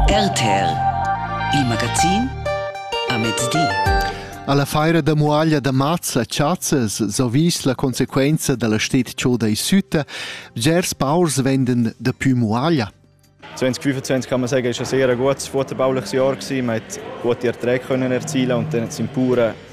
RTL, il magazin a mezdi. Alla feira da muaglia da maz la chazzas so vis la conseguenza dalla stet chod ei süta, bgers paurs venden da più muaglia. 2025 kann man sagen, ist ein sehr gutes, futtebauliches Jahr gewesen. Man hat gute Erträge können erzielen und dann sind die Bauern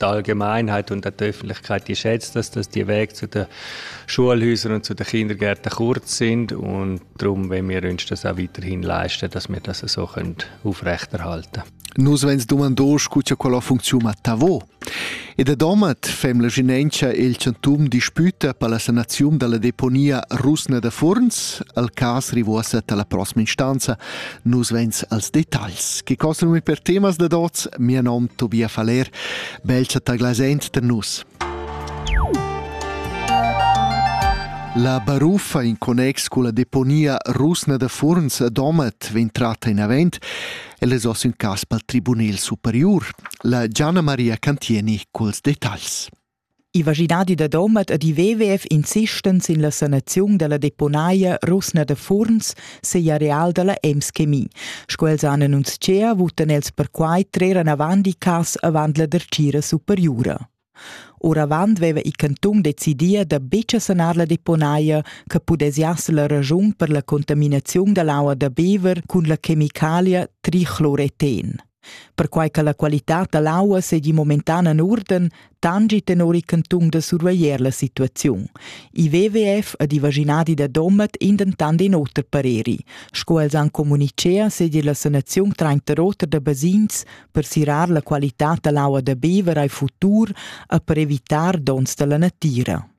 die Allgemeinheit und die Öffentlichkeit die schätzt dass, dass die Wege zu den Schulhäusern und zu den Kindergärten kurz sind und darum wenn wir uns das auch weiterhin leisten, dass wir das so aufrechterhalten können. Nus vens dumandos cu cha quella funcziun a Tavo. E da Domat fem la ginentscha el chantum disputa per la sanaziun dalla deponia rusna da Furns al cas rivosa dalla prossima instanza Nus vegns als detagls che costum per temas da dots, mia nom Tobia Faller, belcha taglasent per nus. La baruffa in connex con la deponia rusna da Furns a Domat vegn tratta in avent el es oss un cas pel Tribunel Superior. La Gianna Maria Cantieni culs detagls. Il vaginadi da Domat ed i VWF insistan sin la sanaziun dalla deponaia rusna da Furns segl areal dalla Ems Chemie. Sco els han annunzia, votan els perquai trer anavant i cas avant la dertgira superiura. Oravant veva il canton decidia da betg sanar la deponaia che pudesiasse la ragiun per la contaminaziun dall'aua da bever cun la chemicalia trichloreten. Perquai che la qualitad da l'aua seigi momentan en urden, tangi tenor il cantun da surveglier la situaziun. Il WWF ed i vaginadi da Domat in dentant in oter pareri. Sco els han communicea seigi la sanaziun trenta roter da basins per sirar la qualitad da l'aua da bever ai futur e per evitar donns dalla natira.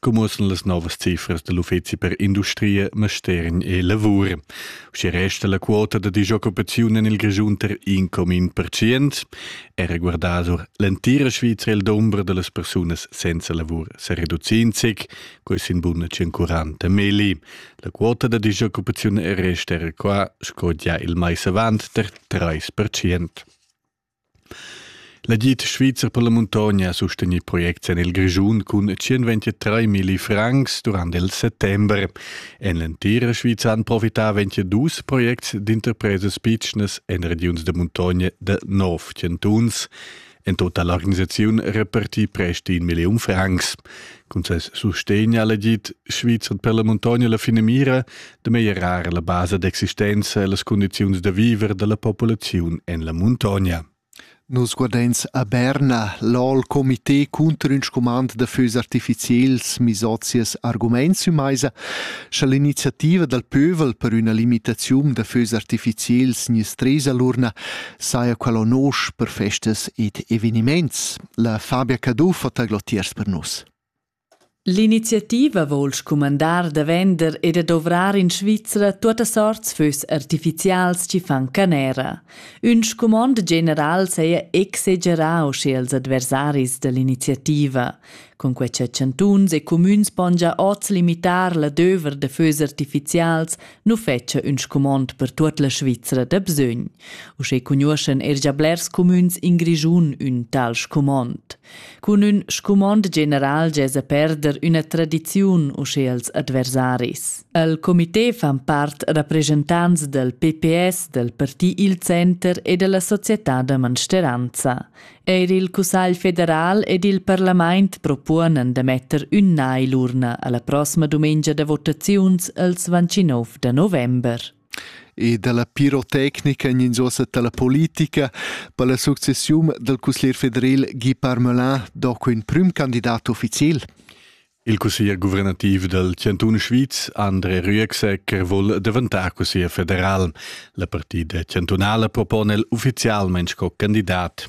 Commussen las novas cifras da l'Uffizi per industria, mastergn e lavur. Schi resta la quota da disoccupaziun en il Grischun ter 1,1%. Era guardasur l'entira Svizzera il d'ombra de las persunas senza lavur se reducinzic, quei sin buna 140 meli. La quota da disoccupaziun resta era qua, sco già il mais avant, ter 3%. L'agid svizzer per la muntogna ha sustegnì projects en il Grischun cun 123 milli francs durant il settember. En l'entira Svizra han profità 22 projects d'interpresas pitschnas en regiuns de muntogna de nov chantuns. En totala l'organisaziun repartì prest 1 milliun francs. Cun ses sustegn ha l'agid svizzer per la muntogna la finamira de meglierar la basa d'existenza e las condiziuns da viver della populaziun en la montagna. Nus guardains a Berna l'All Comité cunter ün scumand da fös artificiels misozias arguments sü meisa, scha l'iniziativa dal pövel per üna limitaziun da fös artificiels nis tresa l'urna saja quella nosch per festas ed eveniments. La Fabia Caduff ha taglotiers per nus. L'iniziativa vol scumandar da vender e da dovrar in Svizra tuotta sorts fös artificials chi fan canera. Ün scumond general saja exagerà usche als adversaris da l'iniziativa. Con quai cha chantuns e cumüns pon già oz limitar l'adöver da fös artificials nu fetscha ün scumond per tuot la Svizra da bsögn. Usche cugnuoschan er già blers cumüns in Grischun ün tal scumond. Cun ün scumond general gesa perder üna tradiziun uschè als adversaris. El comité fan part rappresentants del PPS, del Parti Il Center e della Società da Mansteranza. Eir il Cussagl federal ed il parlament propuonan da metter ün nai l'urna alla prossima dumengia da votaziuns els 29 de november. e dalla pirotecnica en ins ussa dalla politica per la successiun dal cusglier federal Guy Parmelin doco in prim candidat ufficial. Il cusseglier guvernativ del Cantun Schwyz, André Rüegsegger, vuol daventar cusseglier federal. La partida cantunala propone el ufficialment sco candidat.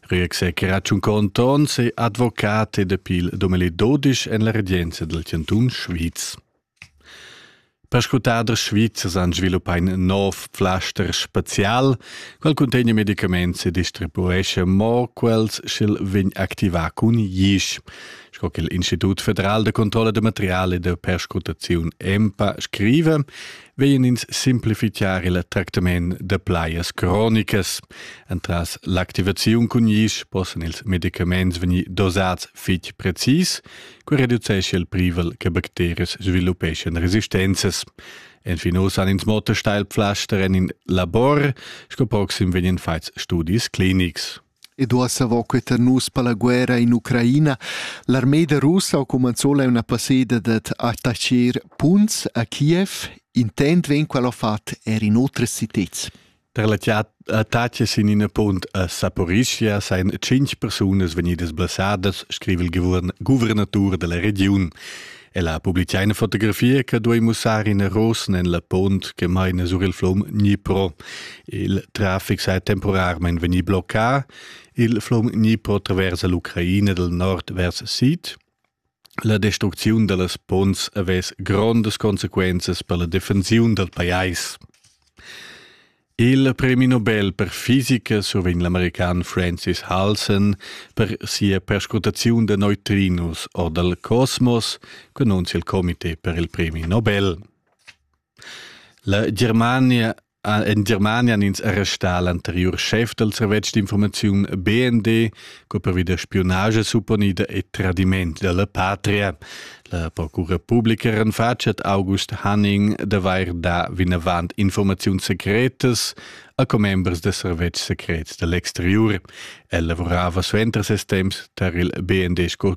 Rüegsegger ha un conto onse advocat ed appeal 2012 en la regenza del Cantun Schwyz. Perscrutaders svizzers han sviluppà in nov flaster spazial, quel cuntegna medicaments e distribuescha mo quels sch'el vegn activà cun isch. Sco che l'Institut federal da controlla da material e da perscrutaziun EMPA scriva, vegn ins simplificar il tractament da plajas cronicas. Entras l'activaziun cun isch possan ils medicaments vegnir dosads fitg precis, Quei reducescha il privel che bacterias sviluppeschan resistenzas. Enfin oz han ins motta Steilpflaster en in labor, sco proxim vegnan fatgs studis clinics. Ed uossa queta nus per la guerra in Ucraina. L'armeda russa ha cumanzò la una passeda dat attaccar punts a Kiev. Intent vegn qual ha fat er in otras citats. Per la tace sin ina punt a Saporischia seien tschintg persunas vegnidas blessadas, scrive il guvernatur della regiun. E la publicà una fotografia che duei mussare in rosen en la pont che maina sur il flum Dnipro. Il traffic sei temporarmente veni bloccato. Il flum Dnipro traversa l'Ucraina del nord vers sid La destrucziun dallas ponts havess grondas consequenzas per la defensiun dal pajais. Il premi Nobel per fisica survegn l'american Francis Halson per sia perscrutaziun da neutrinus or dal cosmos, annunzia il comité per il premi Nobel. La Germania In Germania ins è restà l'anteriur schef dal servetsch d'informaziun BND, co pervi da spiunage supponida e tradiment da la patria. La procura publica renfatschet August Hanning d'avair dà vinavant informaziun secretas a commembers da servetsch secret da l'exteriur. El lavorava suenter ses temps tar il BND sco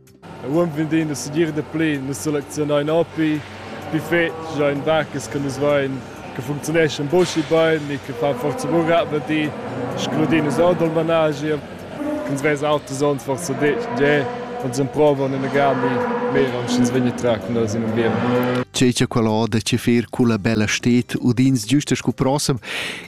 Uonn vendein nus segir dapli, nus selezionein propi pli fetg, ein marcas che nus vein che funcziuneschan buca bein e che fan forsa buca avanti, scrudin nus ord il managi, ch'ins vesa auters onns forsa detg tgè, uns emprovan inagami meira, sch'ins vegn a trar cun els in ambient. Tgei che quella oda che fer culla bella stet udins giusta sco prossem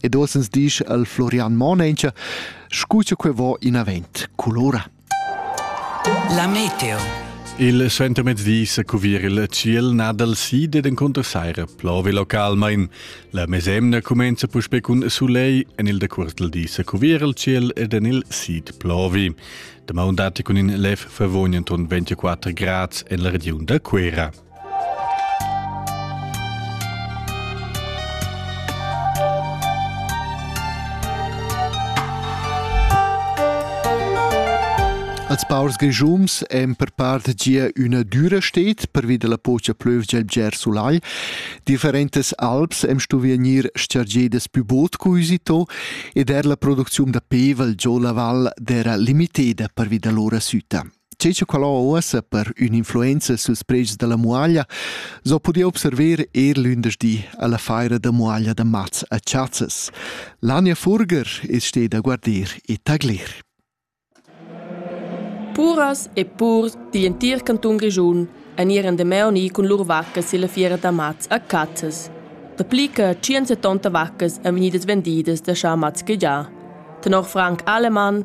ed osens disch al Florian Monencha, scu cha que vo inavent culura. La meteo. Il suentermezdi sa cuvir il ciel na dal sid ed encunter saira plovi localmain. La mesemna cumenza puspè cun sulegl, en il decuertel di sa cuvir il ciel ed en il sid plovi. Damai datti cun in lev favogn enton 24 grads en la regiun da Cuera. Als paurs grischums èn per part gia üna düra stet pervi da la pocha plövgia il bger sulai. Differentas alps hem stuvia gnir chargedas pü bod cuisito ed er la producziun da pevel giò la val d'era limiteda pervi da lora süta. Tge che quella uossa per ün'influenza suls pregs dalla muaglia so pudia observer er lündeschdi alla feira da muaglia da mats a Chazzas. Lania Furger es steda a guardir e taglir. Puras e purs di in tir canton Grischun en ir an de meoni cun lur vaccas illa fiera da mats a Cazzas. Da pli che 170 vaccas en venidas vendidas da Schamats già. Tenor Frank Alemann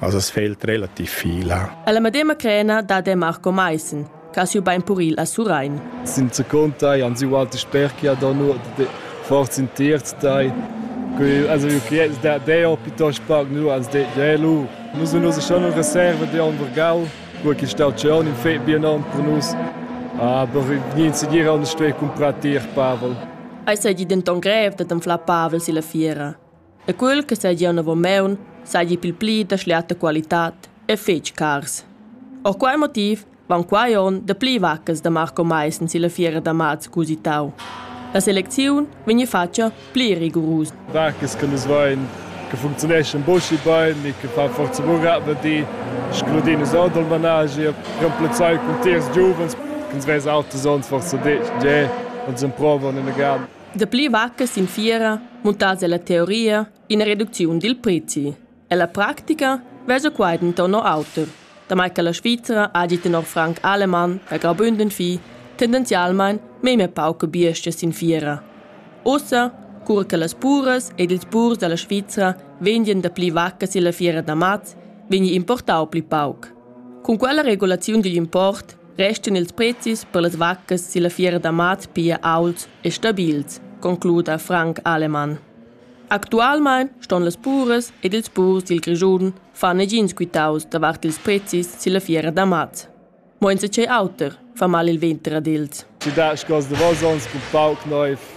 as as fa il relativ fila. E la medema crena da de Marco Maissen, che ha siu bein puril a Surain. Senza contai, han siu alti sperchi ad onur de forza in terz dai. Also da deo piuttosto pag nu ans de jelu. Nus nus schon una reserva de on Vergal, wo che sta schon in fe bien on per nus. Aber niente si dire on sto comprar tier Pavel. Ei sei di denton grev da d'anflar Pavel si la fiera. E quel che seigi anavon seigi pil pli da schliata qualitad e fetg cars. Ord quei motiv van quei onn dapli vaccas da Marco Maissen silla fiera da mats cusitau. La selecziun vegni fatga pli rigurusa. Vaccas che nus vein che funzioneschan buca bein e che fa forza buca di scrudin es ord il managi e remplazzai cun tiers giuvens che ens vess auters onns forsa detg tge und sind provan in der Garten. Dapli vacca sin fiera muntass ella teoria ina reducziun dil prezi. Ella practica vesa quai denton no auter, damai che la Svizra hagi tenor Frank Alemann da graubünden fi tendenzialmein memia pauca biestga sin fiera. Ussa, cura che las puras ed ils purs dalla Svizra vendien dapli vacca silla fiera da maz, vegni importau pli pauc. Cun quella regulaziun digl import restan ils prezis per las vaccas silla fiera da mat pia aults e stabils, concluda Frank Alemann. Actualmein ston las puras ed ils purs dil Grischun far negins quitaus davart ils prezis silla fiera da mat. Mo enzatgei auter fa mal il venter ad els. Ti da sco davos ons cu pauc neiv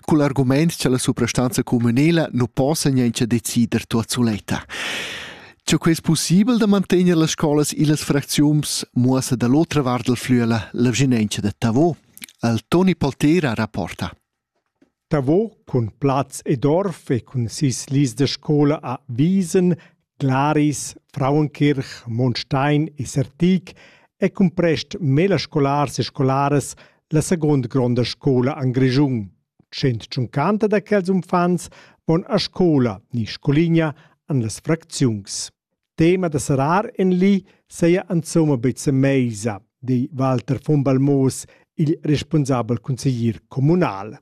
cul argumaint cha la suprastanza cumünela nu possa niauncha decider tuot suletta. Cha quai es pussibel da mantegner las scolas illas fracziuns muossa da l'otra vart dal flüela la vginentscha da Tavo. Al Toni Poltera rapporta. Tavo, cun plaz ed orf e cun sis lis da scola a Wiesen, Glaris, Frauenkirch, Monstein e Sertig ei cumprest mela scolars e scolaras la secunda gronda scola en Grischun. Tschient tschuncanta da quels uffants van a scola ni scoligna en las fracziuns. Tema da serrar en li seia insomma beza meisa, di Walter von Balmoos, il responsabel consiglier communal.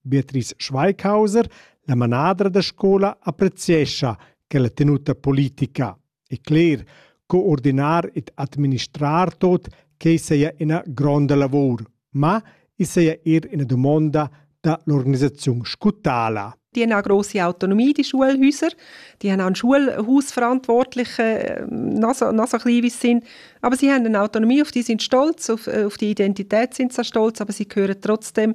Beatrice Schweighauser, la manadra da scola, appreziescha quella tenuta politica e cler co ordinar ed administrar tot quei saja ina gronda lavur, ma i saja er ina dumonda da l'organisaziun scutala. Die haben eine grosse Autonomie, die Schulhäuser. Die haben auch einen Schulhaus verantwortlich, äh, noch so, noch so klein wie sie sind. Aber sie haben eine Autonomie, auf die sind stolz, auf, äh, auf die Identität sind sie stolz, aber sie gehören trotzdem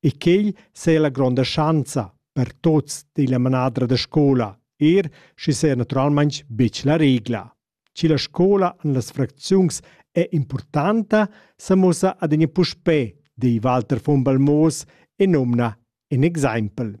e quei seia la gronda schanza per tuts della manadra da scola, er schi sea naturalmein betg la regla. Chi la scola en las fracziuns è importanta, se mussa adina puspè, di Walter von Balmoos e nomna in exempel.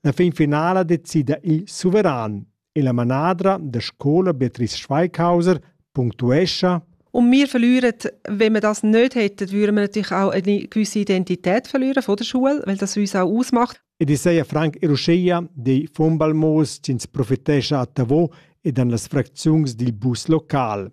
La fin finala decida il suveran e la manadra da scola Beatrice Schweighauser punctuescha und wir verlieren, wenn wir das nicht hätten, würden wir natürlich auch eine gewisse Identität verlieren von der Schule, weil das uns auch ausmacht. Ed Isaia Frank e Ruscheia dei Fumbalmos ins profitescha a Tavò ed an las fracziuns dil bus local.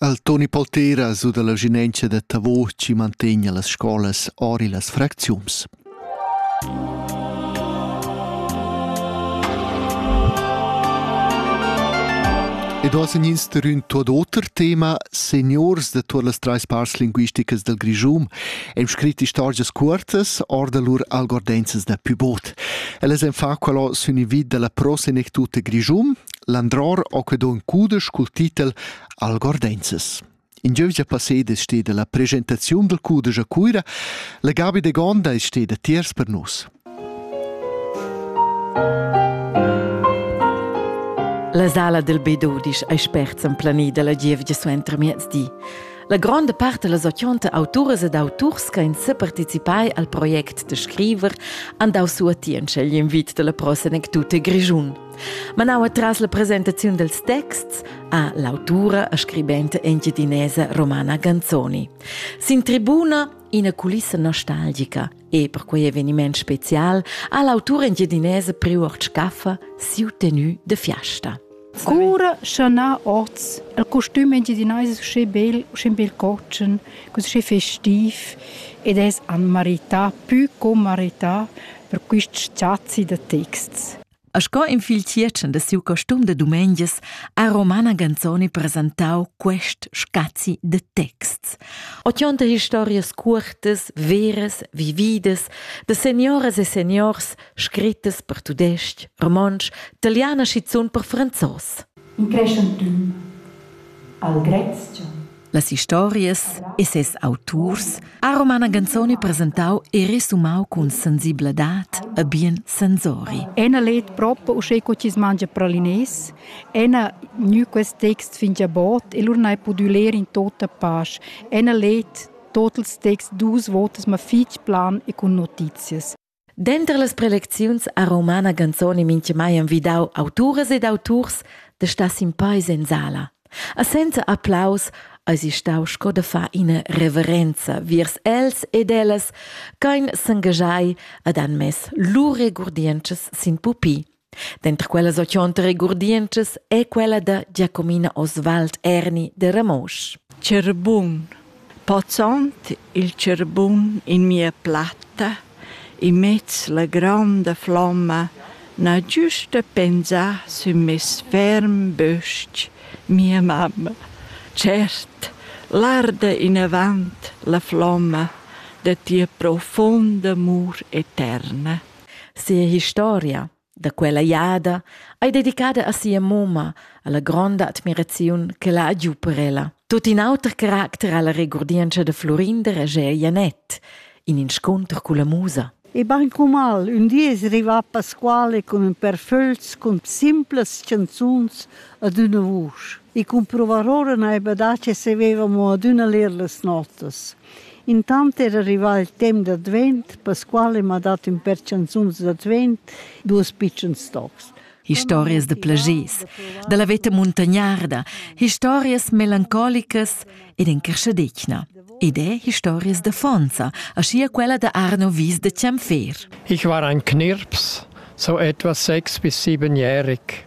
Al Toni Poltera su dalla ginentscha da Tavo chi mantegna las scolas ori las fracziuns. Ed oz en insterün tuot oter tema, seniors da tuot las trais parts linguisticas del Grischum hem scrit istorgias cuortas or da lur algordenzas da pubot. Ellas en fa quello sün i vid della prosenectuta Grischum, Landror ho que do ün cudesch cul titel Algordenzes. In giövgia passeda es steda la presentaziun dal cudesch a Cuira. La Gabi de Gonda es steda tiers per nus. La sala del B12 ei spert emplanida la gievgia suenter miezdi. La gronda part da las ochonta auturas ed auturs che han separticipai al project da scriver han dau suatientscha igl invit dalla prosa anecdota Grischun. Manau atras la presentaziun dels texts ha l'autura e scribenta engiadinesa Romana Ganzoni. Sin tribuna ina culissa nostalgica e per quei eveniment special ha l'autura engiadinesa prior Scaffa siu tenue de fiasta. Cura schon ha oz il costum engiadinese sche bel, sche bel cotschen, così festiv ed es an marità, pü co marità per quist sazzi de texts. A sco in fil tiercen da siu costum da dumengias ha Romana Ganzoni presentau quest scazi de texts. Ochonta historias cuortas, veras, vividas, de senioras e seniors scrittas per tudestg, romontsch, italian e schizun per franzos. In creschent dun. Algrezcha Las historias e ses auturs ha Romana Ganzoni presentau e resumau cun sensibladad e bien sensori. Ena let propo uschè co chi mangia pralines, ena gnü quest text fingia bot e lur n'hai pudü ler in tota pasch. Ena let totals texts dus votas ma fich plan e cun notizias. Denter las prelecziuns ha Romana Ganzoni mintgamai envidau auturas ed auturs da star sin peis en sala. A senza applaus eisi stau sco da far ina reverenza viers els ed ellas ch'ein s'engaschai ed han mess lur regurdientschas sin pupi. Denter quellas ochont regurdientschas ei quella da Giacomina Oswald Erni de Ramosch. Cerbun. Pozzont il cerbun in mia platta, in mez la gronda flomma, na giusta pensà sün mes ferm bösch, mia mamma. Cert, l'arda inavant la flomma de tia profonda amur eterna. Sia historia da quella jada ei dedicada a sia mumma, alla gronda admiraziun che la ha giu per ella. Tut in auter caracter alla regurdientscha de Florinder e Gea Janett, in inscunter culla musa. E ben mal, un di es rivà Pasquale con un per föls con simplas chanzuns ad una vusch. E comprovar ora naiba da che se veva mo ad una ler las notas. Intant era arrivà il temp d'advent, Pasquale m'ha dat ün per chanzuns d'advent, duos pitschens tocs. Historias da plagers, da la veta muntagnarda, historias melancolicas ed in creschadetgna. Ed è historias da Fonza, aschia quella da Arno Wies de Ciamfer. Ich war ein Knirps, so etwa sechs bis siebenjährig.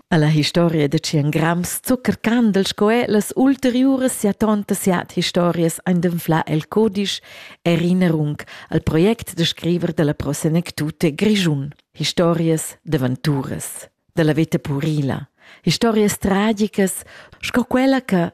Alla historia da tschien grams zucker candel sco è las ulteriuras sia tonta siat historias ein d'enflar el codisch Erinnerung al project da scriver della prosenectute Grischun, historias d'aventuras della veta purila, historias tragicas sco quella che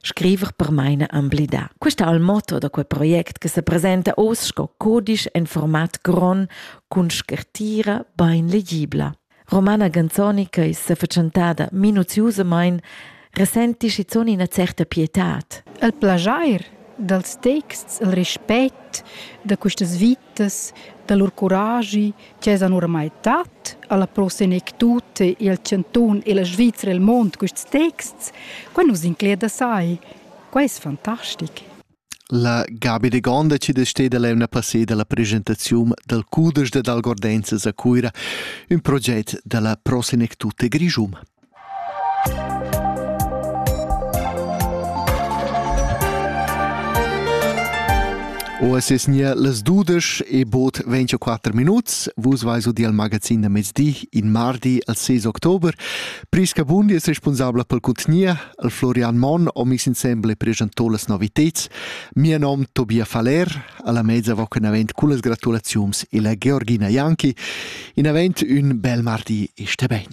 Scriver per maina emblidà. Questa è il motto da quel project che se presenta oz sco codisch en format gron cun scartira bain legibla. Romana Ganzoni, che è fatschentada minuziusamain, resenti schizuon ina certa pietad. Il plajair dals texts, il rispect da questas vit persunas da lur curaschi ch'esan oramai tat alla Pro Senectute il Cantun e la Svizra el mond quests texts, quai nus incleda sai. Quai è fantastic. La Gabi de Gonda ci desteda l'emna passeda la presentazione dal Cudes de Dalgordenzas a Cuira, un progetto della Pro Senectute Grigium. O es es nia las dudesch e bod 24 minuts. Vus vais udial magazin da mezdi in mardi al 6 october. Priska Bundi es responsabla pel contgnia, al Florian Mon ho mis insemble presentò las noviteds. Mia nom Tobia Faller, alla mezza voc in avent con las gratulaziums e la Georgina Janki. In avent un bel mardi e ste ben.